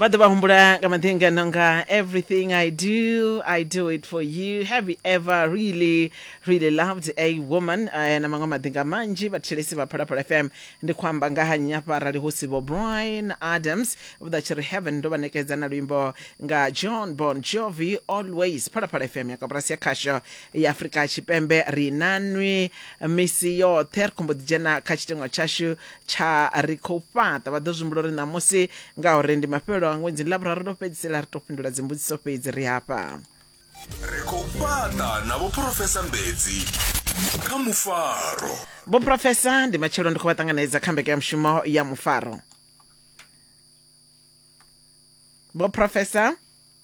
vha ḓo vha humbula nga maḓinga no nga everything i do i do it for you have you ever really really loved a woman uh, na maṅwe maḓinga manzhi vhathetshelesi vha phalaphala fm ndi khou amba nga ha nnyi hafha arali hu si vho brian adams vha tshi ri heaven ndo vha nekedza na luimbo nga john bon jovi always phalaphala fm ya kaburasi ya khasho ya afurika tshipembe ri nanwi misi yoṱhe ri khombo ḓi dzhena kha tshiteṅwa tshashu tsha ri khou fhaṱa vha ḓo zwimbula uri ṋamusi ngauri ndi mafhelelo a ṅwedzi ḽa vhuraru ḽo fhedzisela ri tou fhindula dzimbudziso fhedzi ri hafha ri khou fhaṱa na vhoprofesa mbedzi kha mufaro vhoprofesa ndi matshelo ndi khou vha ṱanganedza kha mbekanyamushumo ya mufaro vhoprofesa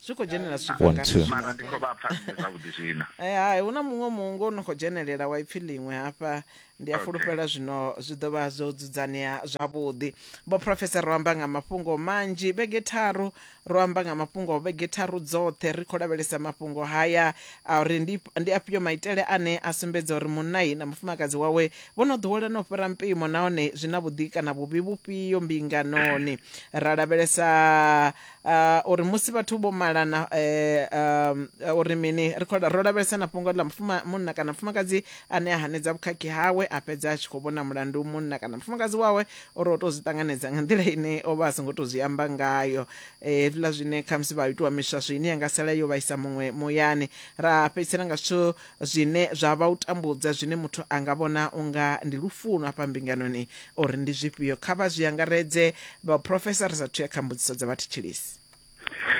zwi khou dzhenelela zwifhinga One, two. mara ndi khou vha pfa ndi zwavhuḓi zwino Eh, hai hu na muṅwe muungo no khou dzhenelela wa ipfi ḽiṅwe hafha ndi a Okay. fulufhela zwino zwi ḓo vha zwo dzudzanea zwavhuḓi vho profesa ro amba nga mafhungo manzhi vhege tharu ro amba nga mafhungo vhege tharu dzoṱhe ri khou lavhelesa mafhungo haya a uri ndi ndi afhio maitele ane a sumbedza uri munnayi na mufumakadzi wawe vho no ḓowelana u fhira mpimo nahone zwi na vhuḓi kana vhuvhi vhufhio mbinganoni ra lavhelesa Uh, uri musi vhathu vho malana uh, uh, uri mini ri khou ro lavhelesa na fhungo ḽa mufuma munna kana mufumakadzi ane a hanedza vhukhakhi hawe a fhedza a tshi khou vhona mulandu munna kana mufumakadzi wawe uri o tou zwi ṱanganedza nga nḓila ine o vha a songo tou zwi amba ngayo hezwiḽa zwine khamusi vha itiwa miswaswo ine ya nga sala yo vhaisa muṅwe muyani ra fhedzisela nga zwithu Zwine zwa vha u tambudza zwine muthu a nga vhona u nga ndi lufuno afha mbinganoni uri ndi zwifhio? Kha vha zwi angaredze, Vhaprofesa, ri sa athu ya kha mbudziso dza vhathetshelesi.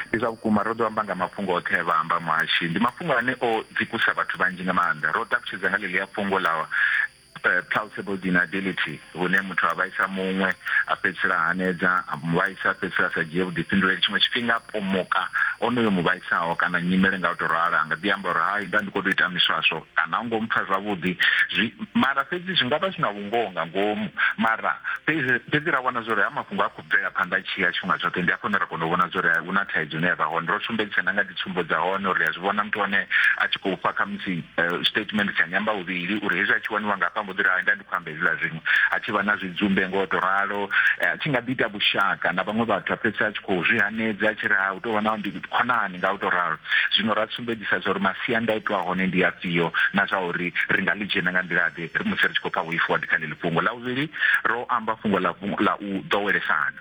Ndi zwa vhukuma, ro ḓo amba nga mafhungo oṱhe e vha amba muhashi. Ndi mafhungo ane o dzikusa vhathu vhanzhi nga maanḓa. Ro ṱalutshedza nga ḽeḽia fhungo ḽa. eh, plausible deniability hune muthu a vhaisa muṅwe a fhedzisela hanedza a muvhaisa fhedzisela sa dzhie vhuḓifhinduleli tshiṅwe tshifhinga a pomoka onoyo muvhaisaho kana nyimele nga u to ralo anga ḓi amba uri hai nda ndi khou tou ita miswaswo kana u ngo mpfa zwavhuḓi zwi mara fhedzi zwi nga vha zwi na vhungoho nga ngomu mara fhedzi ra vhona zwa uri ha mafhungo a bvela phanḓa tshi ya tshifhinga tshoṱhe ndi hafho hune ra kona u vhona zwori hu na thaidzo ine ya vha hone ro sumbedzisa na nga dzitsumbo dza hone uri a zwi vhona muthu wane a tshi khou fha khamusi eh, statement tsha nyamba vhuvhili uri hezwi a tshi waniwa nga hafha mbo ḓi ri nda ndi khou amba hezwiḽa zwiṅwe a tshi vha na zwidzumbe ngo to ralo eh, a tshi nga ḓi ita vhushaka na vhaṅwe vhathu a fhedzisa a tshi khou zwi hanedza a tshi ri ha u tou vha na ndi khonani nga u tou ralo. Zwino ra sumbedzisa zwa uri masiandaitwa a hone ndi afhio na zwa uri ri nga ḽi dzhena nga nḓila-ḓe musi ri tshi khou pfa vhuifu wa kha ḽeḽi fhungo. Ḽa vhuvhili, ro amba fhungo ḽa ḽa u ḓowelesana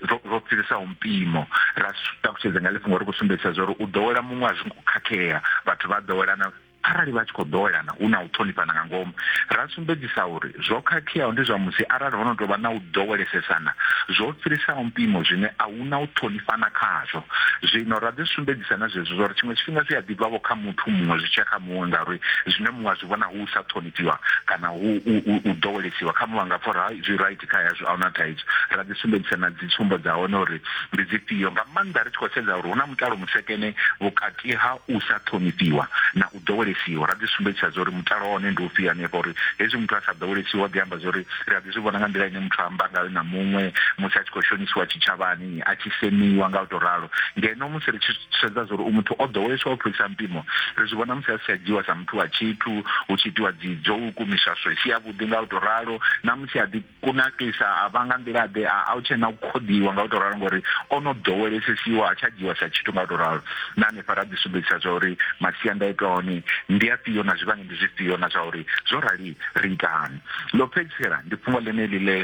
ro ro fhirisaho mpimo, ra ṱalutshedza nga ḽi fhungo ri khou sumbedzisa zwa uri u ḓowela muṅwe a zwi ngo khakhea, vhathu vha ḓowelana. Arali vha tshi khou ḓowelana hu na u ṱhonifhana nga ngomu, ra sumbedzisa uri zwo khakheaho ndi zwa musi arali ho no tou vha na u ḓowelesesana zwo fhirisaho mpimo zwine a hu na u ṱhonifhana khazwo. Zwino ra ḓi sumbedzisa na zwezwi zwa uri tshiṅwe tshifhinga zwi a ḓi bva-vho kha muthu muṅwe zwi tshi ya kha muṅwe ngauri zwine muṅwe a zwi vhona hu u sa ṱhonifhiwa kana hu u ḓowelesiwa kha muṅwe a nga pfa uri hai zwi raithi kha yazwo a hu na thaidzo. Ra ḓi sumbedzisa na dzitsumbo dza hone uri ndi dzifhio, nga maanḓa ri tshi khou sedza uri hu na mutalo musekene vhukati Ke ha u sa ṱhonifhiwa na u ḓowelesiwa. Ra ḓi sumbedzisa zwa uri mutalo wa hone ndi ufhio hanefha, uri hezwi muthu a sa ḓowelesiwi wa ḓi amba zwa uri ri a ḓi zwi vhona nga nḓila ine muthu a amba ngayo na muṅwe musi a tshi khou shonisiwa tshitshavhani, a tshi semiwa nga u tou ralo. Ngeno musi ri tshi sedza zwa uri u muthu o ḓowelesiwa u fhirisa mpimo, ri zwi vhona musi a si tsha dzhiiwa sa muthu wa tshithu, hu tshi itiwa dzidzouku, miswaswo i si yavhuḓi nga u tou ralo, na musi a ḓi. kunakisa a vha nga nḓila ḓe a a u tshena u khoḓiwa nga u to ralo ngori ono ḓowelesesiwa a tsha dzhiwa sa tshithu nga u to ralo na hanefha ra ḓi sumbedzisa zwa uri masiandaitwa hone ndi afhio na zwivhangi ndi zwifhio na zwa uri zwo rali ri itani ḽo fhedzisela ndi fhungo ḽeneḽi ḽe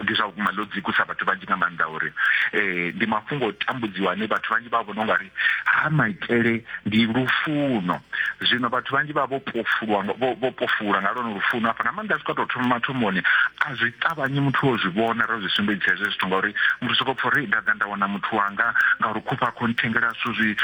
ndi zwa vhukuma ḽo dzikusa vhathu vhanzhi nga maanḓa uri um ndi mafhungo o tambudziwa ane vhathu vhanzhi vha vhona ungari ha maitele ndi lufuno zwino vhathu vhanzhi vha vho pofulwa vho pofula nga lwone lufuno hafha na maanḓa zwi kho to thoma mathomoni a zwi ṱavhanyi muthu wo zwi vhona ro zwi sumbedzisa hezwo zwithu ngauri muthu soko pfha uri nda ḓa nda wana muthu wanga ngauri khufha a khou nthengela zwithu zwi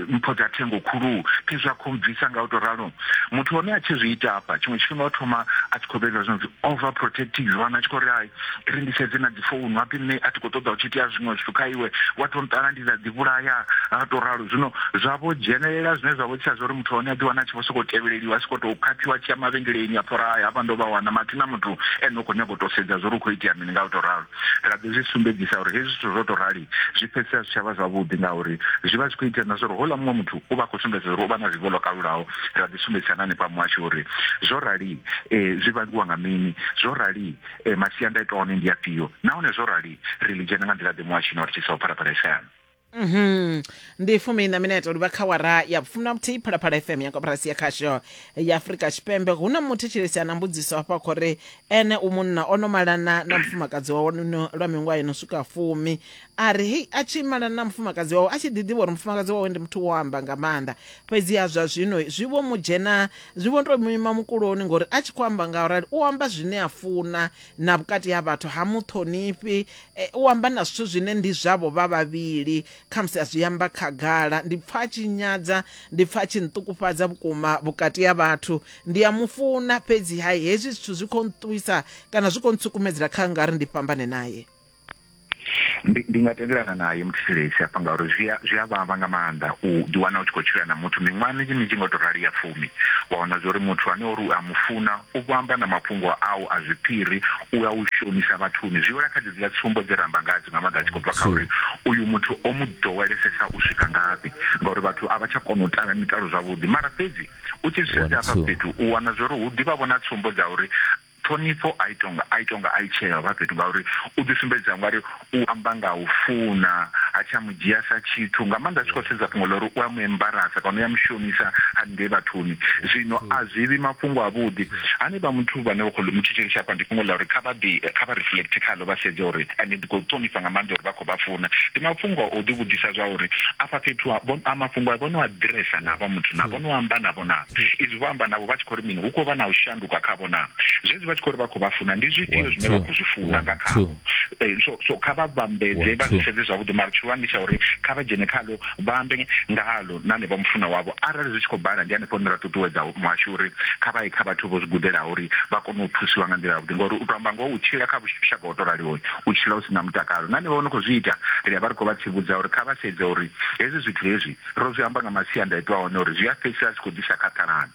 mpho dza thengo khulu khezwi a khou bvisa nga u to ralo muthu hone a tshi zwi ita hafha tshiṅwe tshifhinga o thoma a tshi khou vhevha zwi no pfi over protective vhana a tshi khou ri hai ri ndi sedze na dzi founu hapi nṋe a thi khou ṱoḓa u tshi itea zwiṅwe zwithu kha iwe wa to nṱala ndi dza ḓi vhulaya ha to ralo zwino zwa vho dzhenelela zwine zwa vho tsha zwa uri muthu hone a ḓi wana a tshi vho sokou tevheleliwa a soko tou khaphiwa tshi ya mavhengeleni a phora haya hafha ndo vha wana mathi na muthu ene u khou nyanga u to sedza zwa uri u khou itea mini nga u to ralo ra ḓo zwi sumbedzisa uri hezwi zwithu zwo to rali zwi fhedzisa zwi tshavha zwavhuḓi ngauri zwi vha zwi khou itea na zwa uri houḽa muṅwe muthu u vha khou sumbedza uri u vha na zwivho ḽo kalulaho ra ḓi sumbedzisa na hanefha muhasho uri zwo rali um zwi vhangiwa nga mini zwo rali e, masiandaitwa one ndi afhio nahone zwo rali ri ḽi dzhena nga nḓila ḓe muhashini wa ri tshisa u phalaphala ifeana Mhm. ndi fumi na minete u livha kha wara ya fumi na muthihi phalaphala fm ya koporasi ya khasho ya afurika tshipembe hu na muthetshelesi a na mbudziso hafha khou ri ene u munna o no malana na mufumakadzi wawe no- lwa miṅwaha yo no swika fumi A ri, Hei, a tshi malana na mufumakadzi wawe, a tshi ḓi ḓivha uri mufumakadzi wawe ndi muthu wo amba nga maanḓa. Fhedziha zwa zwino zwi vho mu dzhena, zwi vho tou mu ima mukuloni, ngauri a tshi khou amba nga u rali, u amba zwine a funa, na vhukati ha vhathu ha mu ṱhonifhi, e, u amba na zwithu zwine ndi zwavho vha vhavhili, khamusi a zwi amba khagala. Ndi pfa a tshi nyadza, ndi pfa a tshi nṱukufhadza vhukuma vhukati ha vhathu. Ndi a mu funa, fhedziha hezwi zwithu zwi khou nṱuwisa kana zwi khou ntsukumedzela kha nga ri ndi fhambane nae. ndi ndi nga tendelana naye muthetshelesi hafha ngauri zwi a zwi a vhavha nga maanḓa u ḓi wana u tshi khou tshila na muthu miṅwaha minzhi minzhi nga u tou rali ya fumi wa wana zwa uri muthu ane uri u a mu funa u vho amba na mafhungo au a zwiphiri u a u shonisa vhathuni zwi wela kha dzedziḽa tsumbo dze ra amba ngadzo nga maanḓa a tshi khou bva kha uri uyu muthu o mu ḓowelesesa u swika ngafhi ngauri vhathu a vha tsha kona u tala mitalo zwavhuḓi mara fhedzi u tshi zwi sedza hafha fhethu u wana zwa uri hu ḓivha vho na tsumbo dza uri Ṱhonifho a i tonga a i tonga a i tshee ya u vha fhethu ngauri u ḓi sumbedza nga ri u amba nga u funa ha tsha mu dzhia sa tshithu nga maanḓa a tshi khou sedza fhungo ḽa uri u a mu embarasa kana u ya mu shonisa haningei vhathuni zwino a zwi vhi mafhungo a vhuḓi hanevha muthu vhane vha khou mu thetshelesa hafha ndi fhungo ḽa uri kha vha ḓi kha vha reflect khaḽo vha sedze uri ende ndi khou ṱhonifha nga maanḓa uri vha khou vha funa ndi mafhungo a u ḓi vhudzisa zwa uri afha fhethu a vho a mafhungo a vho no a ḓiresa na vha muthu na vho no amba na vho na izwi vho amba navho vha tshi khou ri mini hu khou vha na u shandula vhukuma khavho na zwezwi vha tshi khou ri vha khou vha funa ndi zwifhio zwine vha khou zwi funa nga khavho eh, so so kha vha vhambedze vha zwi sedze zwavhuḓi mara tshihulwane ndi tsha uri kha vha dzhene khalo vha ambe ngalo na ne vha mufuna wavho arali zwi tshi khou bala ndi hanefho hune ra ṱuṱuwedza muhasho uri kha vha ye kha vhathu vho zwi gudelaho uri vha kone u thusiwa nga nḓila yavhuḓi ngori u to amba ngoho u tshila kha vhushaka ho to raliho u tshila u si na mutakalo na ne vha no khou zwi ita ri a vha ri khou vha tsivhudza uri kha vha sedze uri hezwi zwithu hezwi ro zwi amba nga masiandaitwa hone uri zwi a fhedzisela zwi khou ḓisa khathalano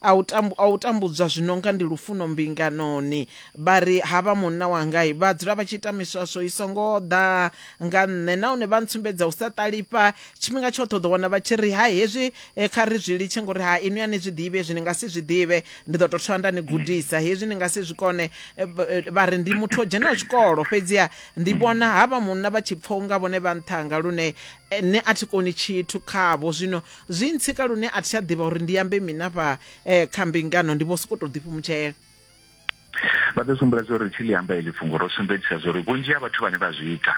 A u tambu, a u tambudzwa zwi no nga ndi lufuno mbinganoni. Vha ri, Ha vha munna wanga, vha dzula vha tshi ita miswaswo i songo ḓa nga nṋe nahone vha ntsumbedza u sa ṱalifha. Tshifhinga tshoṱhe u ḓo wana vha tshi ri, Hai hezwi kha ri zwi litshe ngori ha inwi a ni zwi ḓivhi hezwi, ni nga si zwi ḓivhe. Ndi ḓo tou thoma nda ni gudisa hezwi ni nga si zwi kone. Vha ri, Ndi muthu o dzhenaho tshikolo, fhedziha ndi vhona ha vha munna vha tshi pfa u nga vhone vha nṱha hanga lune nṋe a thi koni tshithu khavho. Zwino Zwi ntsika lune a thi tsha ḓivha uri ndi ambe mini afha eh, kha mbingano ndi vho sokou tou ḓifhumutshela. vha ḓo sumbula zwo ri tshi ḽi amba heḽi fhungo ro sumbedzisa zwo ri vhunzhi ha vhathu vhane vha zwi ita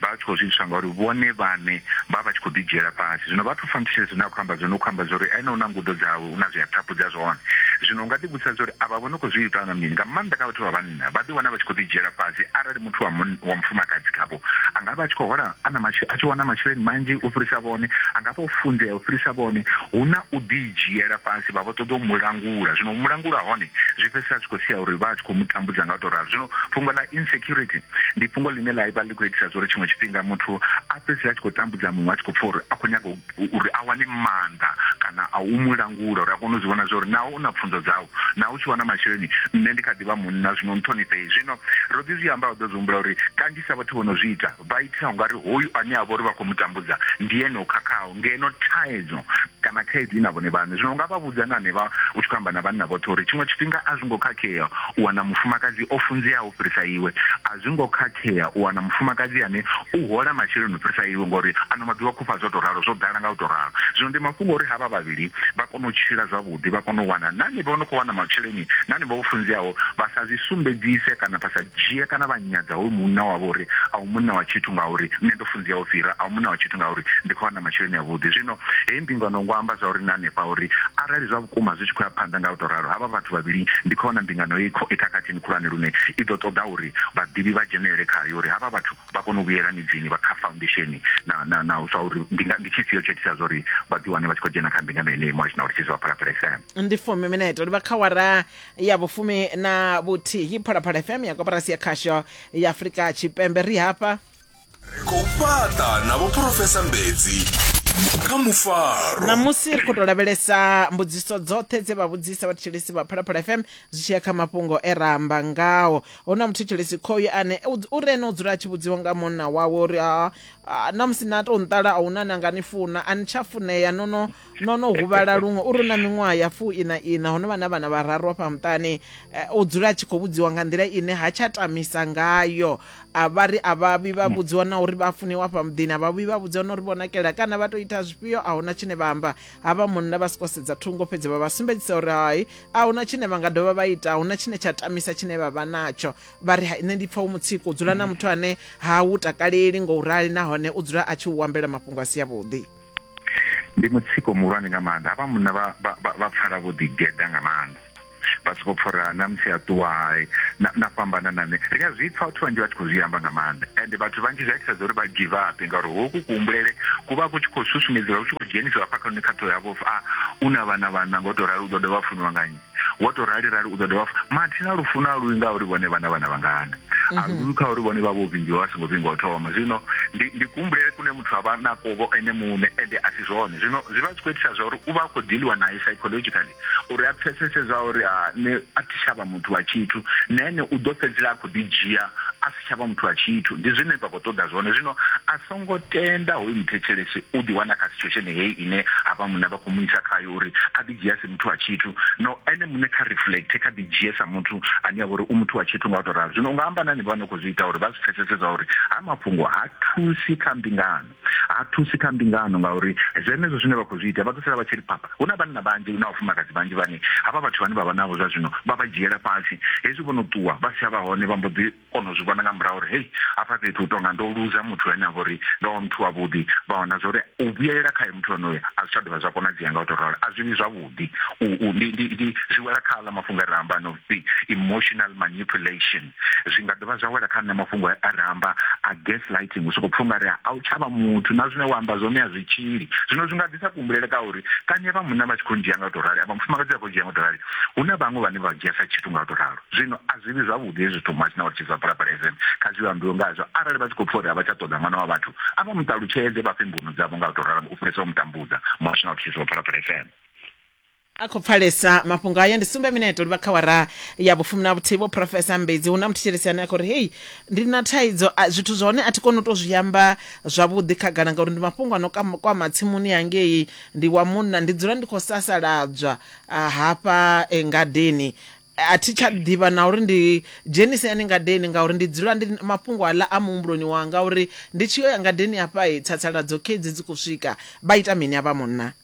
vha vha tshi khou zwi itiswa ngauri vhone vhane vha vha tshi khou ḓidzhiela fhasi zwino vha thu fa nthushele zwine a khou amba zwone u khou amba zwo ri ene u na ngudo dzawe u na zwi a thaphudza zwone zwino u nga ḓivhudzisa zwo ri avha vho no khou zwi ita nga mini nga maanḓa kha vhathu vha vhanna vhanna vha ḓiwana vha tshi khou ḓidzhiela fhasi arali muthu wa wa mufumakadzi khavho a nga vha a tshi khou hola a na a tshi wana masheleni manzhi u fhirisa vhone, a nga vha o funzea u fhirisa vhone, hu na u ḓidzhiela fhasi vha vha ṱoḓa u mu langula. Zwino u mu langula ha hone zwi fhedzisela zwi khou sia uri vha a tshi khou mu tambudza nga u tou ralo. Zwino fhungo ḽa insecurity ndi fhungo ḽine ḽa vha ḽi khou itisa zwa uri tshiṅwe tshifhinga muthu a fhedzisele a tshi khou tambudza muṅwe a tshi khou pfha uri a khou nyaga u uri a wane maanḓa kana a u mu langula uri a kone u zwi vhona zwa uri naho u na pfunzo dzau naho u tshi wana masheleni nṋe ndi kha ḓi vha munna zwino nṱhonifhei zwino ro ḓi zwi amba u ḓo zwi humbula uri kanzhisa vhathu vho no zwi ita vha itisa ungari hoyu ane a vha uri vha khou mu tambudza ndi ene o khakhaho ngeno thaidzo kana khaedu i na vhone vhaṋe zwino u nga vha vhudza na hanevha u tshi khou amba na vhanna vhoṱhe uri tshiṅwe tshifhinga a zwi ngo khakhea u wana mufumakadzi o funzeaho fhirisa iwe. A zwi ngo khakhea u wana mufumakadzi ane u hola masheleni u fhirisa iwe ngauri ano maḓuvha khufha zwo tou ralo, zwo ḓala nga u tou ralo. Zwino ndi mafhungo a uri havha vhavhili vha kone u tshila zwavhuḓi, vha kone u wana na henevho vho no khou wana masheleni na henevho vho funzeaho vha sa zwi sumbedzise kana vha sa dzhie kana vha nyadza hoyu munna wavho uri a u munna wa tshithu ngauri nṋe ndo funzea u fhira, a u munna wa tshithu ngauri ndi khou wana masheleni avhuḓi. Zwino heyi mbingano ngo amba zwa uri na hanefha uri arali zwa Vhukuma, zwi tshi khou ya phanḓa nga u tou ralo, havha vhathu vhavhili ndi khou vhona mbingano i khakhathini khulwane lune i ḓo ṱoḓa uri vhaḓivhi vha dzhenelele khayo uri havha vhathu vha kone u vhuyela midzini vha kha faundesheni na na na u zwauri ndi ndi tshifhio tsho itisa zwauri vha ḓi wane vha tshi khou dzhena kha mbingano yeneyi Moish na u litshisa vha Phalaphala FM. Ndi fumi minete u livha kha wara ya vhufumi na vhuthihi Phalaphala FM ya koporasi ya khasho ya Afrika Tshipembe ri hafha. ri khou fhaṱa na vhophurofesa mbedzi kha mufaro ṋamusi ri khou tou lavhelesa mbudziso dzoṱhe dze vha vhudzisa vhathetshelesi vha phalaphala fm zwi tshi ya kha mafhungo e ra amba ngao hu na muthetshelesi khoyu ane u- u re ene u dzula a tshi vhudziwa nga munna wawe uri "Ah, ah, na musi na tou nṱala a huna na nga ni funa a ni tsha funea no no no no huvhala luṅwe uri na miṅwaha ya fu ina ina hono vha na vhana vhararu afha muṱani eh, o dzula a tshi khou vhudziwa nga nḓila ine ha tsha tamisa ngayo a vha ri a vha vhi vha vhudziwa na uri vha funiwa afha muḓini a vha vhi vha vhudziwa na uri vho nakela kana vha tou ita zwifhio a huna tshine vha amba ha vha munna vha soko sedza thungo fhedzi vha vha sumbedzisa uri hai a huna tshine vha nga dovha vha ita a huna tshine tsha tamisa tshine vha vha natsho vha ri hai nṋe ndi pfa u mutsiko u dzula na muthu ane ha u takaleli ngo u rali nahone u dzula a tshi u ambela mafhungo a si avhuḓi ndi mutsiko muhulwane nga maanḓa havha munna vha pfala vho ḓigeḓa nga maanḓa vha soko pfha uri na musi a ṱuwa hai na fhambana na nṋe ri a zwi pfha vhathu vhanzhi vha tshi khou zwi amba nga maanḓa and vhathu vhanzhi zwi a itisedza uri vha give up ngauri hoku kuhumbulele ku vha ku tshi khou susumedziwa ku tshi khou dzhenisiwa hafha kha nṋe kha ṱhoho yavho a u na vhana vhana ngo tou rali u ḓo dovha funiwa nga nnyi wo to rali rali u ḓo dovha fa mathina lufuno a luwi nga uri vhone vhana vhana vhangana a mhm. luwi kha uri vhone vha vho vhingiwa vha songo vhingiwa thoma zwino ndi ndi kumbulele kune muthu a vha na kovo ene muṋe ende a si zwone zwino zwi vha zwi khou itisa zwa uri u vha a khou diliwa naye psychologically uri a pfesese zwa uri a ne a thi tshavha muthu wa tshithu na ene u ḓo fhedzela a khou ḓi dzhia a si tshavha muthu wa tshithu ndi zwine vha khou ṱoḓa zwone zwino a songo tenda hoyu muthetshelesi u ḓi wana kha situation heyi ine a vha muṋe vha khou mu isa khayo uri a ḓi dzhia muthu wa tshithu no ene muṋe kha reflect kha ḓi dzhie sa muthu ane avha uri u muthu wa tshithu nga u to ralo zwino unga amba nani vha no khou zwi ita uri vha zwi pfesese zwa uri ha mafhungo ha thusi kha mbingano ha thusi kha mbingano ngauri zwenezwo zwine vha khou zwi ita vha ḓo sala vha tshi ri phapha hu na vhanna vhanzhi na vhafumakadzi vhanzhi vhane havha vhathu vhane vha vha navho zwa zwino vha vha dzhiela fhasi hezwi vho no ṱuwa vha si tsha vha hone vha mbo ḓi kono zwi vhona nga murahu uri hei hafha fhethu hu tonga ndo luza muthu ane avha uri ndo vha muthu wavhuḓi vha wana zwa uri u vhuyelela khae muthu onoyo a zwi tsha dovha zwa konadzea nga u to ralo a zwi vhi zwavhuḓi ndi zwi wela kha aḽa mafhungo a re amba no pfi emotional manipulation zwi nga dovha zwa wela kha nṋe mafhungo a re amba a gas lighting u soko pfha ungari a u tshavha muthu na zwine wa amba zwone a zwi tshili zwino zwi nga ḓisa kuhumbulele ka uri kani vha munna vha tshi khou ndzhia nga u to rali a vha mufumakadzi a khou ndzhia nga u to rali hu na vhaṅwe vhane vha dzhia sa tshithu nga u to ralo zwino a zwi vhi zwavhuḓi hezwi zwithu muhasho na vha tshi zwa phalaphala fm kha zwi ambiwe ngazwo arali vha tshi khou pfha uri a vha tsha ṱoḓa ṅwana wa vhathu a vha mu ṱalutshedze vha fhe mbuno dzavho nga u tou ralo u fhirisa u mu tambudza muhasho na vha tshi zwa phalaphala fm a khou pfalesa mafhungo aya ndi sumbe mineto livha kha wara ya vhufumi na vhuthihi vho profesa mbedzi hu na muthetshelesi ane a khou ri hei ndi na thaidzo a- zwithu zwa hone a thi koni u tou zwi amba zwavhuḓi khagala ngauri ndi mafhungo a no kam- kwama tsimuni yangei ndi wa munna ndi dzula ndi khou sasaladzwa ah, hafha eh, ngadeni A thi tsha ḓivha na uri ndi dzhenise hani ngadeni ngauri ndi dzula ndi mafhungo aḽa a muhumbuloni wanga uri ndi tshi yo ya ngadeni hafha he tsatsaladzo khedzi dzi khou swika vha ita mini avha munna.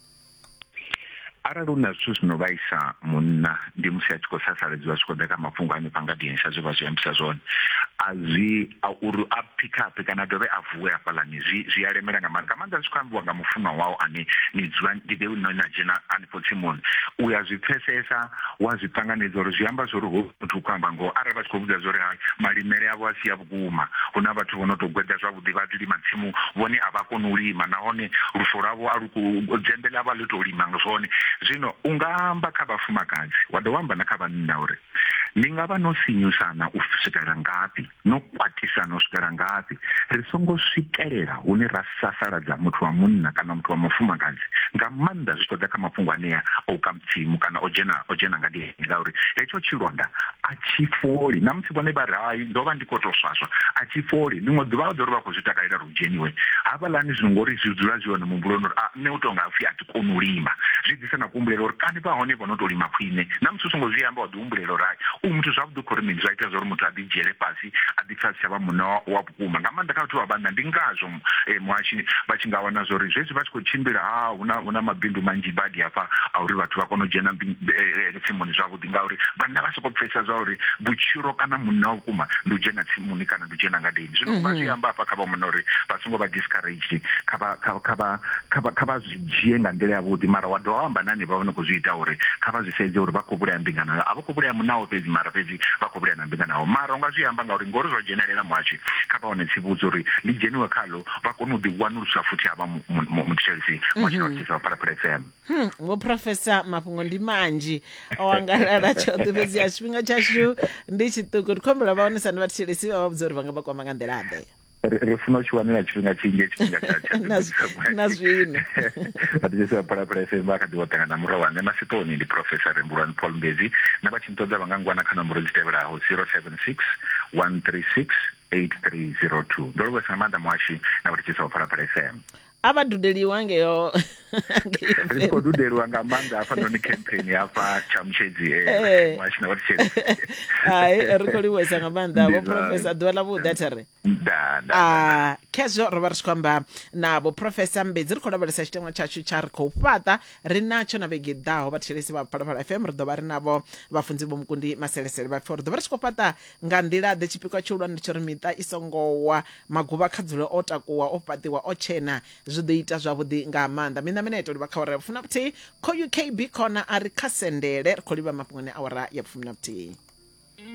Arali hu na zwithu zwi no vhaisa munna ndi musi a tshi khou sasaledziwa zwi tshi khou ḓa kha mafhungo a hanefha ngadeni sa zwe vha zwi ambisa zwone. A zwi a uri a phikhaphe kana a dovhe a vuwe hafhaḽani zwi zwi a lemela nga maanḓa nga maanḓa zwi tshi khou ambiwa nga mufunwa wau ane ni dzula ndi na dzhena. Khotsimun, u ya zwi pfesesa, wa zwi ṱanganedza uri zwi amba zwori hoyu muthu u khou amba ngoho arali vha tshi khou vhudza zwori hai malimele avho a si a vhukuma. Hu na vhathu vho no tou gweda zwavhuḓi vha ḓi lima tsimu vhone a vha koni u lima nahone lufo lwavho a lu ku, dzembe ḽavho a ḽi tou lima zwone. Zwino u nga amba kha vhafumakadzi wa dovha wa amba na kha vhanna uri ni nga vha no sinyusana u swikela ngafhi. no khwaṱhisa no swikela ngafhi ri songo swikelela hune ra sasaladza muthu wa munna kana muthu wa mufumakadzi nga maanḓa zwi tshi ḓa kha mafhungo anea a u kamtsimu kana o dzhena o dzhena nga ndiheni ngauri hetsho tshilonda a tshi foli na musi vhone vha ri hai ndo vha ndi khou tou swaswa a tshi foli ḽiṅwe ḓuvha vha ḓo ri vha khou zwi takalela ri dzheniwe hafhaḽani zwino ngori zwi dzula zwi hone muhumbuloni uri a nṋe u tou nga pfhi a thi koni u lima zwi ḓisa na kuhumbulelo uri kani vha hone vho no tou lima khwine na musi u songo zwi amba wa humbulelo rai u muthu zwavhuḓi u khou ri mini zwa ita zwauri muthu a ḓi dzhiele fhasi a ḓi pfha a si tsha vha munna wa vhukuma nga maanḓa kha vhathu vha vhanna ndi ngazwo eh, muhashi vha tshi nga wana zwori zwezwi vha tshi khou tshimbila ha ah, huna huna mabindu manzhi badi hafha a uri vhathu vha kone u dzhena eh, eh, tsimuni zwavhuḓi ngauri vhanna vha sokou pfesa zwa uri vhutshilo kana munna wa vhukuma ndi u dzhena tsimuni kana ndi u dzhena ngadeni zwino vha zwi mhm. amba hafha kha vha munna uri vha songo vha discouraged kha vha kha vha kha vha kha vha dzhie nga nḓila ya vhuḓi mara wa dovha wa amba na hanevha vha no khou zwi ita uri kha vha zwi sedze uri vha khou vhulaya mbingano yo a vha khou vhulaya munawo fhedzi mara fhedzi vha khou vhulaya na mbingano yao mara unga zwi amba ngauri ngori zwa dzhenelela muhashi kha vha wane tsivhudza uri ḽi dzheniwe khalo vha kone u ḓi wanulusa futhi havha muthetshelisi wa tshinothisa phalaphala fm hmm, vho professor mafhungo ndi manzhi o angalala tshoṱhe fhedzi ya tshifhinga tshashu ndi tshiṱuku ri khombela vha wanisa ni vhathetshelesi vha vha vhudza uri vha nga vha kwama nga nḓila ḓe ri funa u tshi wanela tshifhinga tshinzhi tshifhinga tsha tsha na zwino a ḓi sa phala phala FM a kha ḓi woṱanga na murawa nṋe masiponi ndi professor Rembulwani Paul Mbezi na vha tshi nṱoḓa vha nga ngwana kha nomboro dzi tevhelaho 076 136 8302 ndo livhuwa nga maanḓa muhashi na vha tshi sa phala phala FM a vha dudeliwa ngeyo ri khou dudeliwa nga maanḓa hafhanoni campaign hafha tshamutshedzi eh, eh. washina wa tshedzi hai ri khou livhuwesa nga maanḓa vho profesa ḓuvha ḽa vhuḓa tha ri ah, khezwo ro vha ri tshi khou amba na vho profesa mbedzi ri khou lavhelesa tshiteṅwa tshashu tsha ri khou fhaṱa ri natsho na vhege ḓaho vhathetshelesi vha phalaphala fm ri ḓo vha ri navho vhafunzi vho mukundi maselesele vha pfhi ri ḓo vha ri tshi khou fhaṱa Nga nḓila-ḓe? Tshipikwa tshihulwane ndi tsha uri miṱa i songo wa, maguvha kha dzule o takuwa, o fhaṱiwa, o tshena. Zwi ḓo ita zwavhuḓi nga maanḓa. Miṋa miṋa ya tou livha kha awara ya vhufumi na vhuthihi. Khoyu KB Corner a ri kha sendele. Ri khou livha mafhungoni a awara ya vhufumi na vhuthihi.